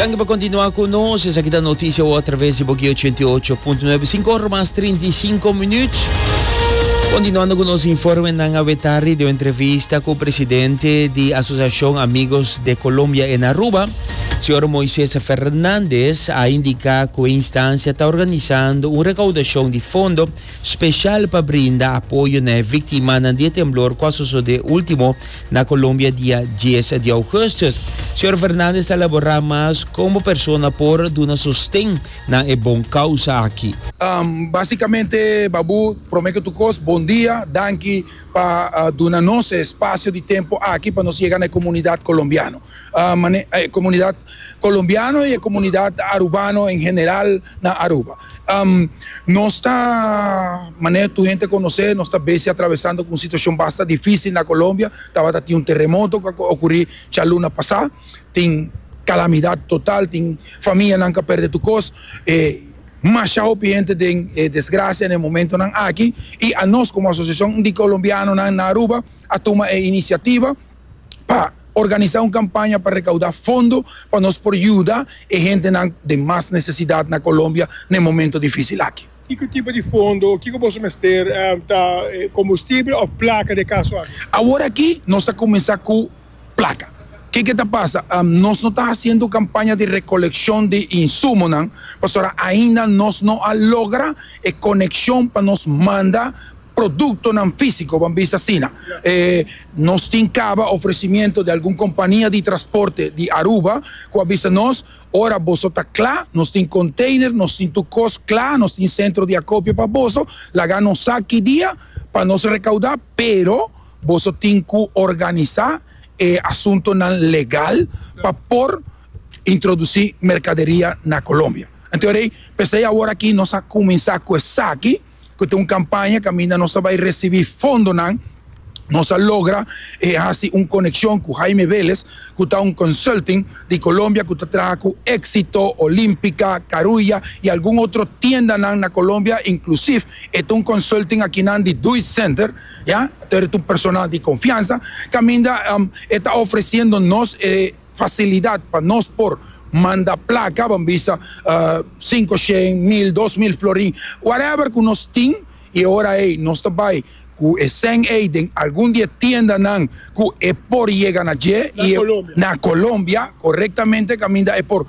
Danki pa kontinua ku nos. Esaki ta Notisia Wou atraves di Boki 88.9. Sinku ora mas trinta i sinku minut. Kontinuando ku nos informenan a wetari di un entrevista ku presidente di Asosiashon Amigos de Colombia en Aruba, señor Moises Fernandez, a indiká ku e instansia ta organisando un rekaudashon di fondo special pa brinda apoyo na e victimanan di e temblor cu a sosode ultimo na Colombia dia dies di augustus. Señor Fernandez ta labora mas con bo persona por duna sosten na e bon causa aki. Basicamente Babu, prome cu tur cos bon dia, danki pa duna nos e espacio di tempo aki pa nos yega na e comunidad colombiano, comunidad. Colombiano y e comunidad Arubano en general na Aruba. Nos ta, manera tur hende ta conoce, nos ta besi atravesando cu un situacion basta dificil na Colombia. Tabata tin un terremoto cu a ocuri djaluna pasa, tin calamidad total, tin famianan cu a perde tur cos. Masha hopi hende den desgracia na e momentonan aki y anos como asociacion di Colombianonan na Aruba a tuma e iniciativa. pa organisá un kampaña pa rekaudá fondo pa nos por yuda e hentenan den mas nesesidat na Colombia na e momentu difísil aki. Kiko tipo di fondo o kiko boso mester? Ta kombustibel òf plaka den e kaso aki? Awor aki nos ta kuminsá ku plaka. Ke ke ta pasa? Nos no ta hasiendo kampaña di rekolekshon di insumonan pasobra ainda nos no a logra e konekshon pa nos manda. Produktonan físiko, Ban bisa asina, e nos tin kaba ofresimiento di algun kompania di trasporte di Aruba ku a bisa nos, Ora boso ta kla, nos tin konteiner, nos tin tur kos kla, nos tin sentro di akopio pa boso, laga nos sa ki dia pa nos rekaudá, pero boso tin ku organisá e asuntonan legal pa por introdusí merkaderia na Colombia. Anto rei, p'esei aworakí nos a kuminsá ku esaki. ku ta un kampaña kaminda nos ta bai resibi fondonan, nos a logra e hasi un konekshon ku Jaime Vélez, ku ta un consulting di Colombia ku ta traha ku Éxito, Olímpica, Carulla i algun otro tiendanan na Colombia, inklusiv e ta un consulting akinan di Deutsch Center, ya, tur e ta un personal di konfiansa, kaminda e ta ofresiendo nos e. facilidad pa nos por manda placa ban bisa cinco shen mil dos mil florin whatever cu nos tin y e ora ey nos ta bay cu e cen ey den algun di e tiendanan cu e por yega na dje y na Colombia corectamente caminda e por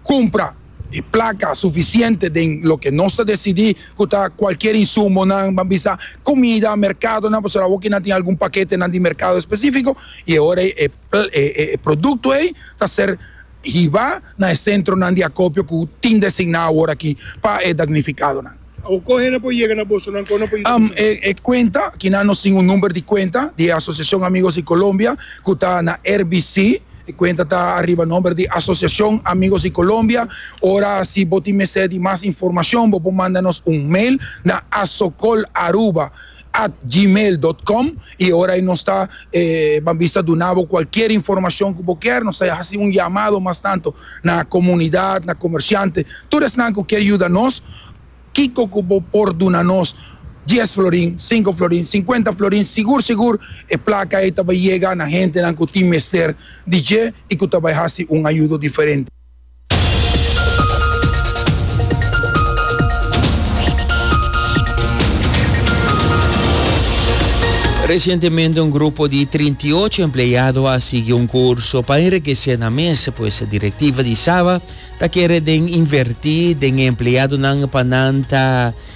cumpra e placa suficiente den loke nos ta decidi cu ta cualkier insumonan ban bisa comida mercadonan pasobra awoki nan tin algun paketenan di mercado especifico y e ora ey e. e produkto ei ta ser hiba na e sentronan di akopio ku tin designá awor aki pa e dagnifikado. Awor kon hende por yega na bosonan? Kon no por yega na bosonan? E kuenta kinan nos tin un number di kuenta di e Asosiashon Amigos di Colombia ku ta na RBC, e kuenta ta ariba nomber di Asosiashon Amigos di Colombia. Ora si bo tin mester di mas informashon bo por manda nos un mail na asocol@. at gmail dot com y e ora ei nos ta e ban bisa duna bo cualkier informacion cu bo kier, nos ta haci un yamado mas tanto na comunidad, na comerciante, tur esnan cu kier yuda nos, kico cu bo por duna nos dies florin, cinco florin, cincuenta florin, sigur sigur e placa ei ta bay yega na hentenan cu tin mester di dje y cu ta bay haci un ayudo diferente. Resientemente un grupo di 38 empleado a sigui un curso pa enriquece na mes pues directiva di Saba ta kere den inverti den empleadonan pa nan ta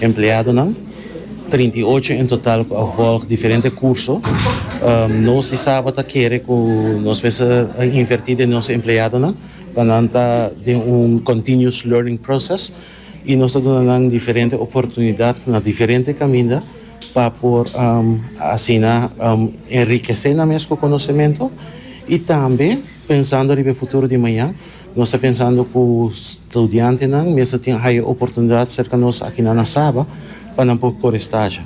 Empleadonan, trinta i ocho en total cu a volg diferente curso. Nos di Saba ta kere cu nos mester a inverti den nos empleadonan pa nan ta den un continuous learning process y nos ta duna nan diferente oportunidad na diferente caminda pa por asina enrikece nan mes cu conocemento y tambe, Pensando riba e futuro di maña, nos ta pensando cu studiantenan mes ta tin haya oportunidad cerca nos akinan na Saba pa nan por core staja.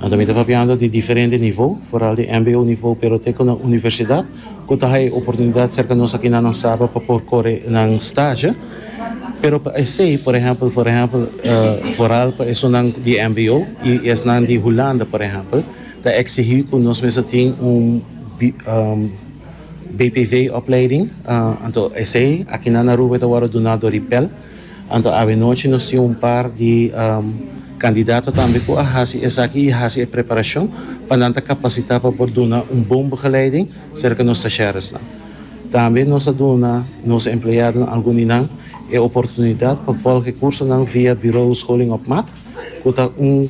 Nan tambe ta papiando di diferente nivou, foral di mbo nivou pero te cu nan universidad cu ta haya oportunidad cerca nos akinan na Saba pa por core nan staja. Pero pa esey, por ehempel, por ehempel, foral pa esunnan di mbo y esnan di Hulanda, por ehempel, ta exigi cu nos mes ta tin un, BPV opleiding, anto esey aki nan Aruba e ta wòrdu duná dor di Pell. Anto avenochi nos tin un par di kandidato tambe ku a hasi esaki i hasi e preparashon pa nan ta kapasitá pa por duna un bon begeleiding serka nos stasheresnan. Tambe nos ta duna nos empleadonan algun di nan e oportunidat pa vòlg e kursonan via Bureau Scholing op Maat ku ta un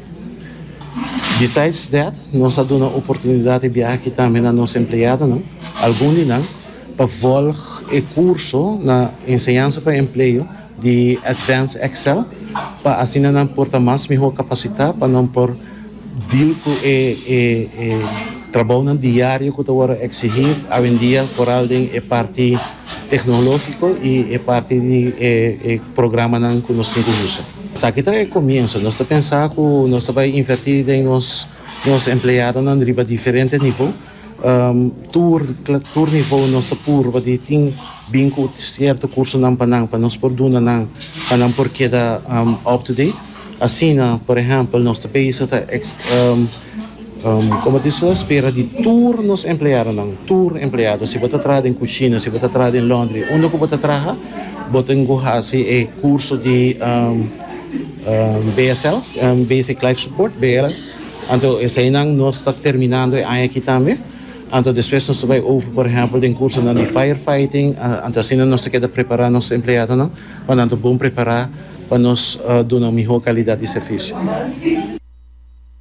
Besides that, nos a duna oportunidad di biaha aki tambe na nos empleadonan, algun di nan, pa volg e curso na Enseñanza pa Empleo di Advanced Excel pa asina nan por ta mas mihor capacita pa nan por deal cu e trabounan diario cu ta worde exigi awendia foral den e parti tecnologico y e parti di e programanan cu nos tin cu usa. Esaki ta e comienso. Nos ta pensa cu nos ta bay inverti den nos nos empleadonan riba diferente nivel. Tur tur nivel nos ta purba di tin bin cu cierto cursonan pa nan pa nos por duna nan pa nan por keda up to date. Asina, por ehempel, nos ta bezig ta Como tin so espera di tur nos empleadonan, tur empleado, si bo ta traha den cushina, si bo ta traha den laundry, unda cu bo ta traha, bo tin cu haci e curso di BSL, Basic Life Support, BLS. Anto eseinan nos ta terminando e aña aki tambe. Anto despues nos ta bay over, por ehempel, den cursonan di fire fighting. Anto asina nos ta keda prepara nos empleadonan pa nan ta bon prepara pa nos duna un miho calidad di servicio.